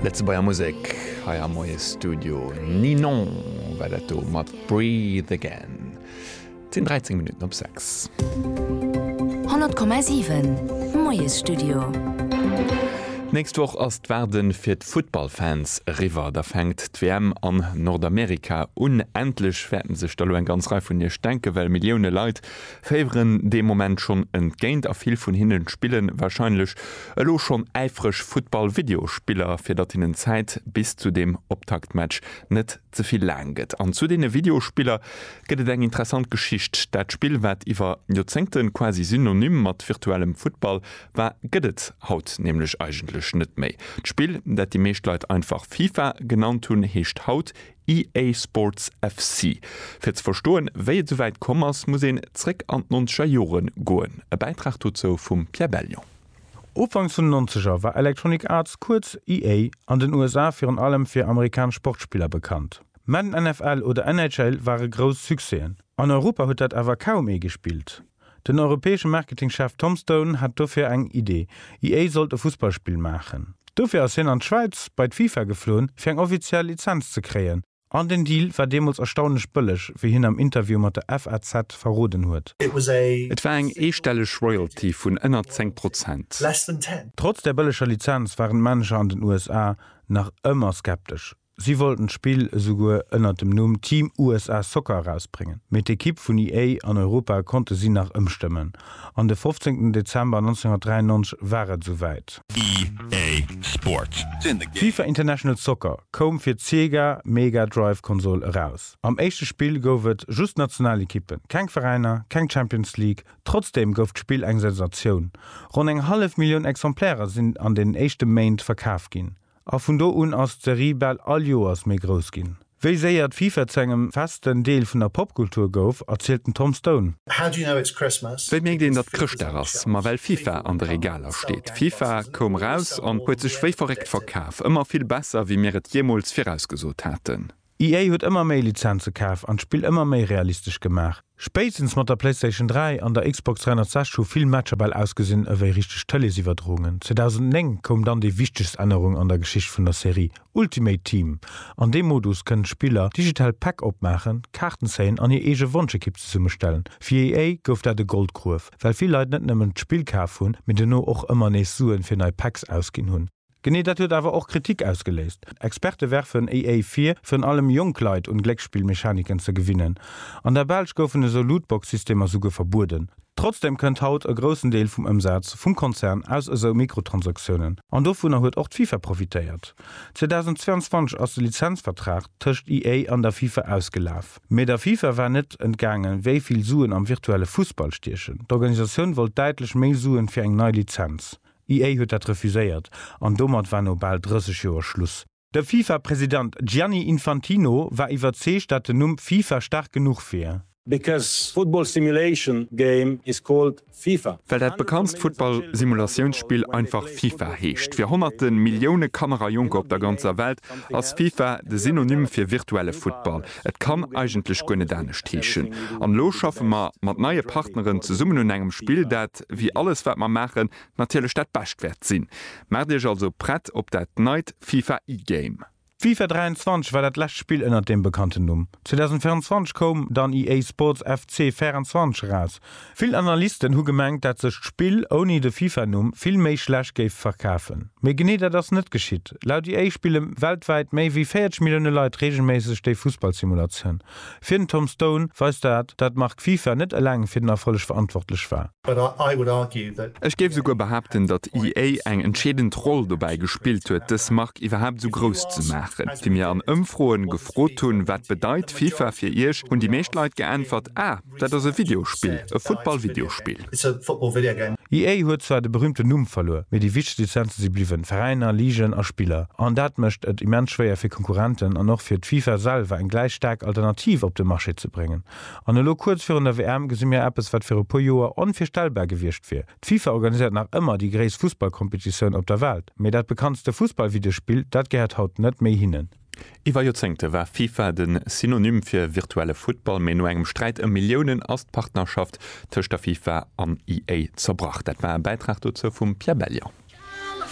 Lëtzebuerger Musek hei am Moie Studio. Ninon war dat do mat Breathe Again. Et sinn 13 Minutten op 6. 100,7, Moie Studio. D'nächst Woch ass d'Waarde fir d'Futtballfans eriwwer. Da fänkt d'WM an Nordamerika un. Endlech wäerten sech da lo eng ganz Rei vun Iech denken, well Millioune Leit féieren dee Moment schonn entgéint a vill vun hinnen spillen wahrscheinlech elo schonn äifreg Futtball-Videospiller, fir datt hinnen d'Zäit bis zu deem Optaktmatch net ze vill laang gëtt. An zu deene Videospiller gëtt et eng interessant Geschicht. Dat Spill, wat iwwer Joerzéngten quasi synonym mat virtuellem Futtball war, gëtt et haut nämlech eigentlech net méi. D'Spill, dat déi meescht Leit einfach FIFA genannt hunn, heescht haut EA Sports FC. Fir ze verstoen, wéi et souwäit komm ass, muss een zréck an d'nonzeger Jore goen. E Bäitrag dozou vum Pierre Bellion. Ufank vun den Nonzeger war Electronic Arts, kuerz EA, an den USA virun allem fir amerikanesch Sportspiller bekannt. Madden NFL oder NHL ware grouss Succèsen. An Europa huet dat awer kaum ee gespillt. Den europäesche Marketingchef Tom Stone hat dofir eng Idee, EA sollt e Fussballspill maachen. Dofir ass hien an d'Schwäiz bei d'FIFA gefloen, fir eng offiziell Lizenz ze kréien. An den Deal war deemools erstaunlech bëlleg, wéi hien am Interview mat der FAZ verroden huet. Et war eng eestelleg Royalty vun ënner 10 Prozent. Trotz der bëlleger Lizenz waren d'Manager an den USA nach ëmmer skeptesch. Si wollten d'Spill esouguer ënnert dem Numm Team USA Soccer erausbréngen, mee d'Ekipp vun EA an Europa konnte si nach ëmstëmmen, an de 15 Dezember 1993 war et esou wäit. EA Sports, sinn de Game. FIFA International Soccer koum fir d'Sega Mega Drive Konsol eraus. Am éischte Spill gouf et just national Ekippen, keng Veräiner, keng Champions League. Trotzdeem gouf d'Spill eng Sensatioun, ronn eng hallef Millioun Exemplairen sinn an den éischte Méint verkaf ginn. A vun do un ass d'Serie bal all Joers méi grouss ginn. Wéi séier d'FIFA zu engem festen Deel vun der Popkultur gouf, erzielt den Tom Stone. Wéi mierkt een, datt Chrëschtdag ass? Ma well FIFA an de Regaler steet. FIFA koum raus an huet sech wéi verréckt verkaf. Ëmmer vill besser, wéi mir et jeemools virausgesot haten. EA huet ëmmer méi Lizenze kaf an d'Spill ëmmer méi realistesch gemaach. Spéitstens mat der PlayStation 3 an der Xbox 360 hu vill Matcher bal ausgesinn ewéi richteg Tëleesiwwerdroungen. 2009 koum dann déi wichtegst Ännerung an der Geschicht vun der Serie, Ultimate Team. An deem Modus kënnen d'Spiller digital Päck opmaachen, Kaarten zéien an hir eege Wonschekipp zesummestellen. Fir EA gouf dat e Goldgruef, well vill Leit net nëmmen d'Spill kaf hunn, mee dono och ëmmer nees Suen fir nei Packs ausginn hunn. Genee dat huet awer och Kritik ausgeléist. Experte werfen EA vir, virun allem jonk Leit un Glécksspillmechaniken ze gewinnen. An der Belsch goufen esou Lootbox-Systemer souguer verbueden. Trotzdem kënnt haut e groussen Deel vum Ëmsaz vum Konzern aus esou Mikrotransaktiounen, an dovunner huet och d'FIFA profitéiert. 2022 ass de Lizenzvertrag tëscht EA an der FIFA ausgelaf. Mee der FIFA war net entgaangen, wéi vill Suen am virtuelle Fussball stiechen. D'Organisatioun wollt däitlech méi Suen fir eng nei Lizenz. D'IA huet dat refuséiert an domat war no bal 30 Joer Schluss. De FIFA-President Gianni Infantino war iwwerzeegt, dat den Numm FIFA staark genuch wier. Because football simulation game is called FIFA. Well dat bekanntst Futtball-Simulatiounspill einfach FIFA heescht. Fir honnerte Millioune Kanner a Jonker op der ganzer Welt ass FIFA de Synonym fir virtuelle Futtball. Et kann eigentlech guer net anescht heeschen. An elo schaffe mer mat neie Partneren zesummen un engem Spill, dat, wéi alles wat mer maachen, natierlech dat Bescht wäert sinn. Maacht Iech also prett op dat neit FIFA E-Game. D'FIFA 23 war dat lescht Spill ënnert deem bekannten Numm. 2024 koum dann EA Sports FC 24 eraus. Vill Analysten hu gemengt, dat sech d'Spill ouni de Fifa-Numm vill méi schlecht géif verkafen. Mee genee dat ass net geschitt. Laut EA spille weltwäit méi wéi 40 Millioune Leit reegelméisseg déi Fussballsimulatioun. Fir den Tom Stone weist dat, dat d'Mark Fifa net eleng fir den Erfolleg verantwortlech war. Ech géif esouguer behaapten, datt EA eng entscheedend Roll dobäi gespillt huet, dës Mark iwwerhaapt esou grouss ze maachen. Wéi mir an Ëmfroen gefrot hunn, wat bedeit Fifa fir iech, hunn déi meescht Leit geäntwert, Ah! Dat ass e Videospill, e Futtball-Videospill. EA huet zwar de berüümten Numm verluer, mee déi wichtegst Lizenze si bliwwen, Veräiner, Ligen a Spiller. An dat mécht et immens schwéier fir Konkurrenten an och fir d'FIFA selwer eng gläich staark Alternativ op de Marché ze bréngen. An elo kuerz virun der WM gesi mir eppes, wat viru puer Joer onvirstellbar gewiescht wier. D'FIFA organiséiert nach ëmmer déi gréisst Fussballkompetitioun op der Welt, mee dat bekanntste Fussballvideospill, dat gehéiert haut net méi hinnen. Iwwer Joerzéngte war FIFA de Synonym fir virtuelle Futtball, mee no engem Sträit ëm Milliounen ass d'Partnerschaft tëscht der FIFA an EA zerbrach. Dat war e Bäitrag dozou vum Pierre Bellion.